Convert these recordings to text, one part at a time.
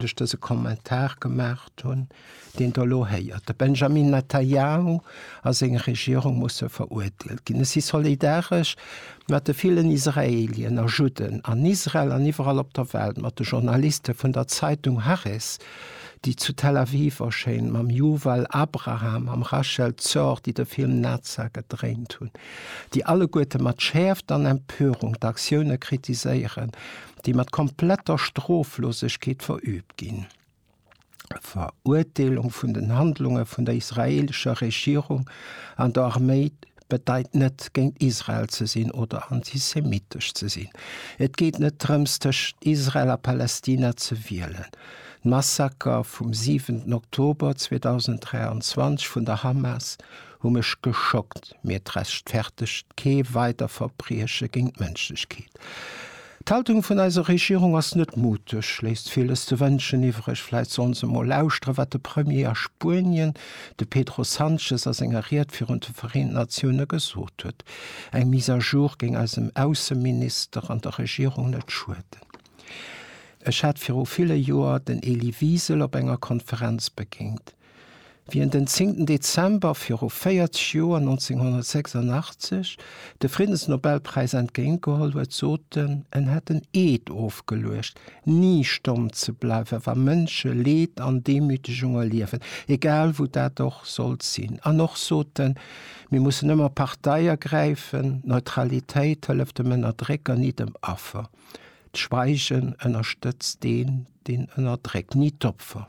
datt ech dëse Kommentar gemaacht hunn, deen Der elo héiert. De Benjamin Netanyahu a seng Regierung musse veruerteelt ginn. Ech si solidaresch mat de villen Israelien a Judden an Israel an iwwerall op der Welt, mat de Journaliste vun der Zeitung Haaretz, déi zu Tel Aviv erschéinen, mam Yuval Abraham, mam Rachel Zor, déi de Film Naza gedréint hunn, déi alleguerte mat Schäerft an Empörung d'Aktioune kritiséieren, déi mat kompletter Stroflosegkeet verüübt ginn. D'Verurteelung vun den Handlunge vun der israeelescher Regierung an der Arméi bedeit net, géint Israel ze sinn oder antisemitesch ze sinn. Et geet net drëms, tëschent Israel a Palästina ze wielen. D'Massaker vum 7 Oktober 2023 vun der Hamas hu mech geschockt, mir d'Rechtfertegt kee weider Verbrieche géint d'Mënschlechkeet. D'Haltung vun eiser Regierung ass net muteg, léisst villes ze wënschen iwwreg. Vläit sollen se mol lauschteren, wat de Premier a Spuenien, de Pedro Sanchez, a senger Ried virun de Vereenten Natioune gesot huet. Eng Mise à jour géing eisem Ausseminister an der Regierung net schueden. Ech hat viru ville Joer den Elie Wiesel op enger Konferenz begéint. Wéi en den 10 Dezember viru 40 Joer, 1986, de Friddensnobelpräis entgéint geholl huet, sot en, en hätt en Eed ofgeluecht, ni stomm ze bleiwen, wa Mënsche Leed an Demütegung erliewen, egal wou dat och sollt sinn. An och sot en, mir mussen ëmmer Partei ergräifen, Neutralitéit hëlleft dem Ënnerdrécker, ni dem Affer. D'Schweigen ënnerstëtzt deen, deen ënnerdréckt, ni d'Opfer.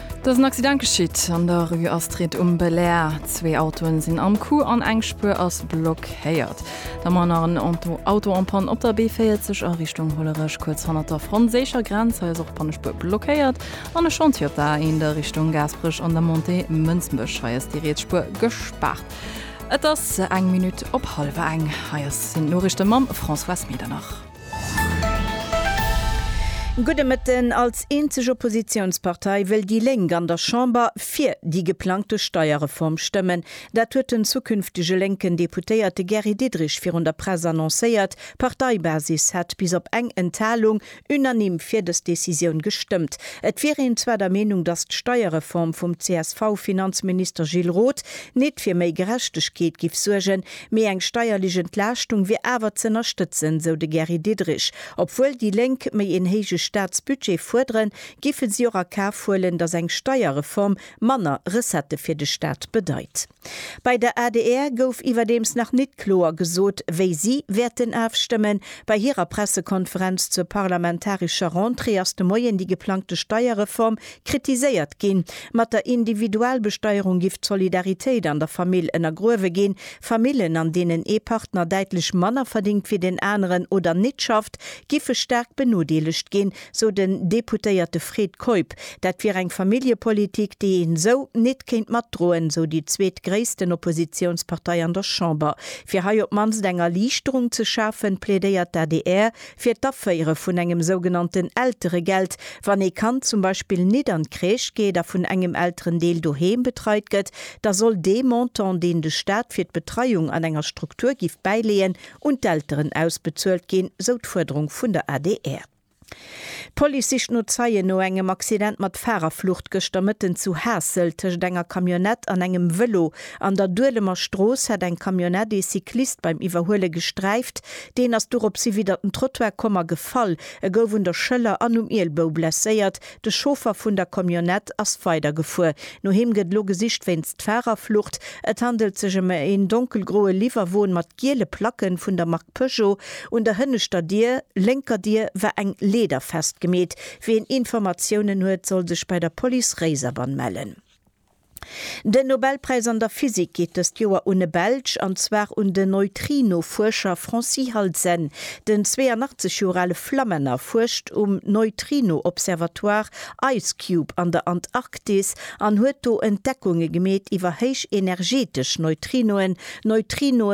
Et ass en Accident geschitt an der Rue Astrid um Belair. Zwee Autoen sinn am Coup an eng Spuer ass blockéiert. Da mer nach en Auto en panne op der B40 a Richtung Hollerech, kuerz hannert der franséischer Grenz. Hei ass och d'Pannespuer blockéiert. An e Chantier op der A1 Richtung Gaasperech an der Montée Mënsbech. Hei ass déi riets Spuer gespaart. Et ass eng Minutt op hallwer eng. Hei sinn d'Noriichte mam Françoise Medernach. Gudde Mëtten. Als eenzeg Oppositiounspartei wëll déi Lénk an der Chamber fir déi geplangte Steierreform stëmmen. Dat huet den zukünftege lénken Deputéierte Gary Diderich virun der Press annoncéiert. D'Parteibasis hätt bis op eng Enthalung unanime fir dës Decisioun gestëmmt. Et wier een zwar der Meenung, datt d'Steierreform vum CSV-Finanzminister Gilles Roth nit fir méi Gerechtegkeet giff suergen, Mee eng steierlech Entlaaschtung wier awer z'ënnerstëtzen, sou de Gary Diderich. Obwuel déi Lénk méi een héije Staatsbudget fuerderen, giffe si och a Kaf huelen, datt eng Steierreform manner Recettë fir de Staat bedeit. Bei der adr gouf iwwerdeems nach nit kloer gesot, wéi si wäerten afstëmmen. Bei hirer Pressekonferenz zur parlamentarescher Rentrée ass de Moien déi geplangte Steierreform kritiséiert ginn. Mat der Individualbesteierung giff d'Solidaritéit an der Famill ënnergruewe ginn. Famillen, an deenen ee Partner däitlech manner verdingt wéi den aneren oder nit schafft, giffe staark benodeelegt ginn, sou den Deputéierte Fred Keup. Dat wier eng Familljepolitik, déi een esou nit kéint matdroen, sou déi zweetgréissten Oppositiounspartei an der Chamber. Fir hei op d'mannst eng Erliichterung ze schafen, plädéiert d'ADR fir d'Aféiere vun engem sougenannten Elteregeld, wann ee Kand zum Beispill nit an d'Crèche geet a vun engem Elterendeel doheem betreit gëtt, da soll dee Montant, deen de Staat fir d'Betreiung an enger Struktur giff bäileeën, un d'Elteren ausbezuelt ginn, sou d'Fuerderung vun der adr. D'Police sicht no Zeien no engem Accident mat Fahrerflucht gëschter Mëtten zu Haassel. Tëscht enger Camionnette an engem Vëlo an der Duelemer Strooss hat eng Camionnette ee Cyclist beim Iwwerhuele gesträift. Deen ass doropshi widder den Trottoir komm a gefall. E gouf un der Schëller an um Ielbou blesséiert. De Chauffer vun der Camionnette ass weidergefuer. No him gëtt elo gesicht wéinst Fahrerflucht. Et handelt sech ëm en donkelgroe Liwwerwon mat giele Placken vun der Mark Peugeot. Un der hënneschter Dier, lénker Dier, war eng Leeder festgemeet. Wien Informatiounen huet, soll sech bei der Police Réiserbann mellen. Den Nobelpräis an der Physik geet dëst Joer un e Belsch, an zwar un den Neutrino-Fuerscher Francis Halzen. Den 82 Joer ale Flammänner fuerscht um Neutrino-Observatoire IceCube an der Antarktis an huet do Entdeckunge gemeet iwwer héichenergetesch Neutrinoen, Neutrinoe